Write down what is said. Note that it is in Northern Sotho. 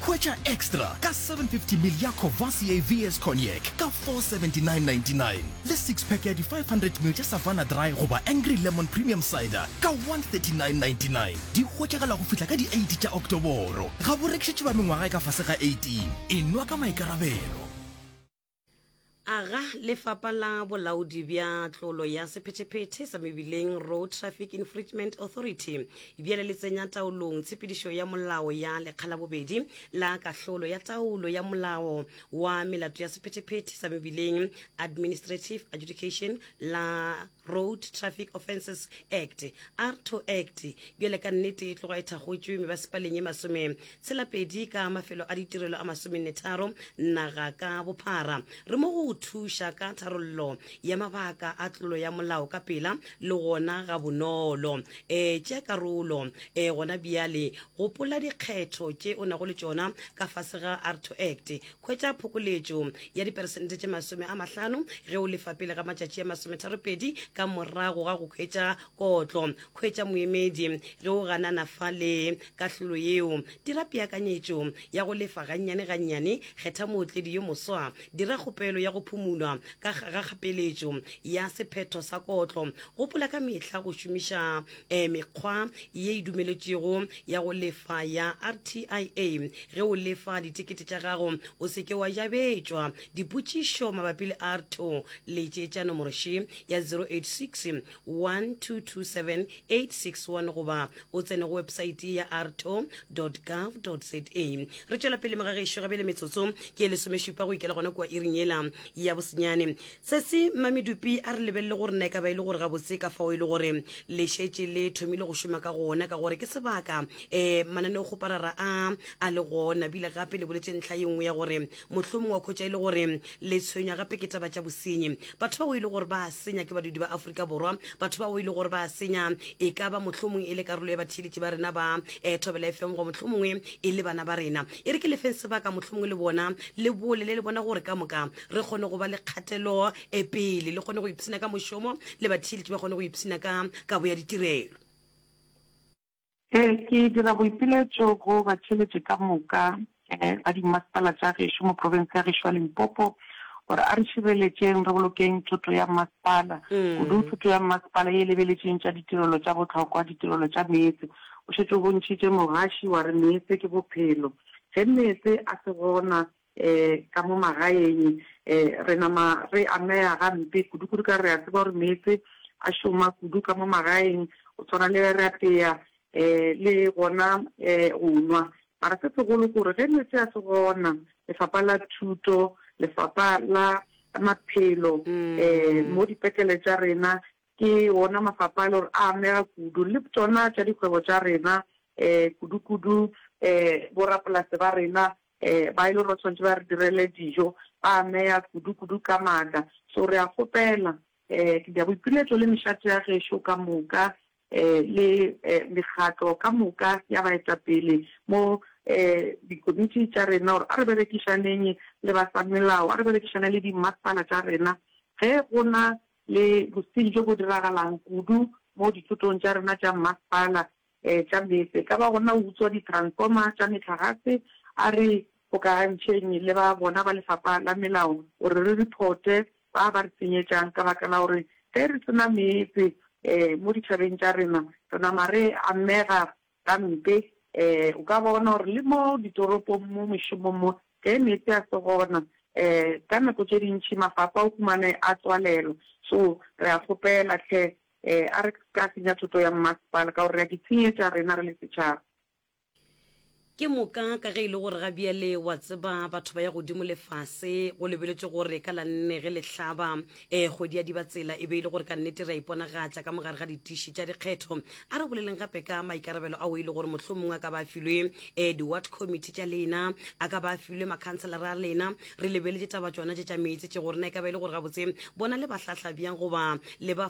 Hwetša Extra ka 750ml ya Courvoisier VS Cognac ka 479.99 le six-pack ya di 500ml tša Savanna Dry goba Angry Lemon Premium Cider ka 139.99. Di hwetšagala go fihla ka di 8 tša Oktoboro. Ga bo rekišetšwe ba mengwaga e ka fase ga 18. E nwa ka maikarabelo. Aga Lefapa la Bolaodi bja Tlolo ya Sephetephete sa Mebileng, Road Traffic Infringement Authority, bjale le tsenya taolong tshepedišo ya molao ya lekga la bobedi la kahlolo ya taolo ya molao wa melato ya sephetephete sa mebileng, Administrative Adjudication, la Road Traffic Offences Act, RTO Act, bjale ka nnete e tloga e thakgotšwe mebasepaleng ye masome tshelapedi ka mafelo a ditirelo a masomennetharo naga ka bophara. Re mo go thuša ka tharollo ya mabaka a tlolo ya molao ka pela le gona ga bonolo. E tše karolo e gona bjale, gopola dikgetho tše o nago le tšona ka fase ga RTO Act Hwetša phokoletšo ya diperesente tše masome a mahlano ge o lefa pele ga matšatši a masometharopedi ka morago ga go hwetša kotlo. Hwetša moemedi ge o ganana fa le kahlolo yeo. Dira peakanyetšo ya go lefa gannyane-gannyane. Kgetha mootledi yo moswa. Dira kgopelo ya go phumulwa ka ga kgapeletšo ya sephetho sa kotlo. Gopola ka mehla go šomiša e mekgwa ye e dumeletšwego ya go lefa ya RTIA. Ge o lefa ditekete tša gago, o se ke wa jabetšwa. Dipotšišo mabapi le RTO, letšetša nomoro še ya 086 1227 861 goba o tsene go weposaete ya rto.gov.za. Re tšwela pele, moga gešo, gabjale metsotso ke e lesomešupa go ikela gona kua iring yela ya bosenyane. Sesi, Mma Medupi a re lebelele gore na e ka ba e le gore gabotse ka fao e le gore le šetše le thomile go šoma ka gona ka gore ke sebaka um mananeokgoparara a a le gona bile gape le boletše ntlha ye nngwe ya gore mohlomongwe wa khwetša e le gore le tshwenywa gape ke taba tša bosenyi batho bao e le gore ba a senya ke badudi ba Afrika Borwa batho bao e le gore ba a senya e ka ba mohlomongwe e le karolo ya batheeletši ba rena ba um Thobela FM go mohlomongwe e le bana ba rena e re ke lefeng sebaka mohlomongwe le bona le bolele le bona gore ka moka re kgone go ba le kgatelo e pele le kgone go ipshina ka mošomo le batheeletši ba kgone go ipshina ka kabo ya ditirelo um ke dira boipiletšo go batheeletši ka moka um ba dimasepala tša gešo mo profense ya gešo ya limpopo gore a re šireletšeng re bolokeng thoto ya masepala mm. kudu thoto ya masepala e lebeletšeng tša ditirelo tša botlhokwa ditirelo tša meetse o šetse o bontšhitše mogaši wa re meetse ke bophelo ge meetse a se gona Ka mo magaeng re nama re amega gampe kudu-kudu ka gore re a tseba gore meetse a šoma kudu ka mo magaeng, go tshwana le ge re apea le gona go nwa. Mara se segolo ke gore ge meetse a se gona, lefapha la thuto, lefapha la maphelo, mo dipetlele tša rena ke wona mafapha a e le gore a amega kudu, le tšona tša dikgwebo tša rena, kudu-kudu borapolase ba rena Ee, ba e le gore ba tshwanetse ba re direle dijo, ba ameya kudu-kudu ka maatla. So re a kgopela, ee, ke Diaboipiletšo le mešate ya gešo ka moka, ee, le, ee, mekgatlo ka moka ya baetapele mo, ee, dikomiti tša rena, gore a re berekišaneng le ba sa melao, a re berekišane le dimmasepala tša rena. Ge go na le bosing bjo bo diragalang kudu mo dithotong tša rena tša mmasepala, E tla meetse, e ka ba gona o utswa ditransfoma tša metlagase, a re kgokagantšheng le ba bona ba lefapha la melao gore re riphote ba ba re tsenyetšang ka baka la gore ge re se na meetse mo ditšhabeng tša rena re nama re amega gampe. O ka bona gore le mo ditoropong mo mešomong mo ge meetse a se gona ka nako tše dintši mafapha o humane a tswalelwa. So re a kgopela hle Ee, a re ka senya thoto ya mmasepala ka gore re a di tshenyetša rena re le setšhaba. Ke moka ka ge e le gore ga bjale wa tseba batho ba ya godimo lefase go lebeletšwe gore ka la nne ge le hlaba um kgwedi ya dibatsela e be e le gore ka nnete re a iponagatša ka mogare ga ditiši tša dikgetho. A re boleleng gape ka maikarabelo ao e le gore mohlomongwe a ka ba a filwe um di-ward committee tša lena, a ka ba a filwe makhanselara a lena. Re lebeletše taba tšona tše tša meetse tše gore na e ka ba e le gore gabotse bona le ba hlahla bjang goba le ba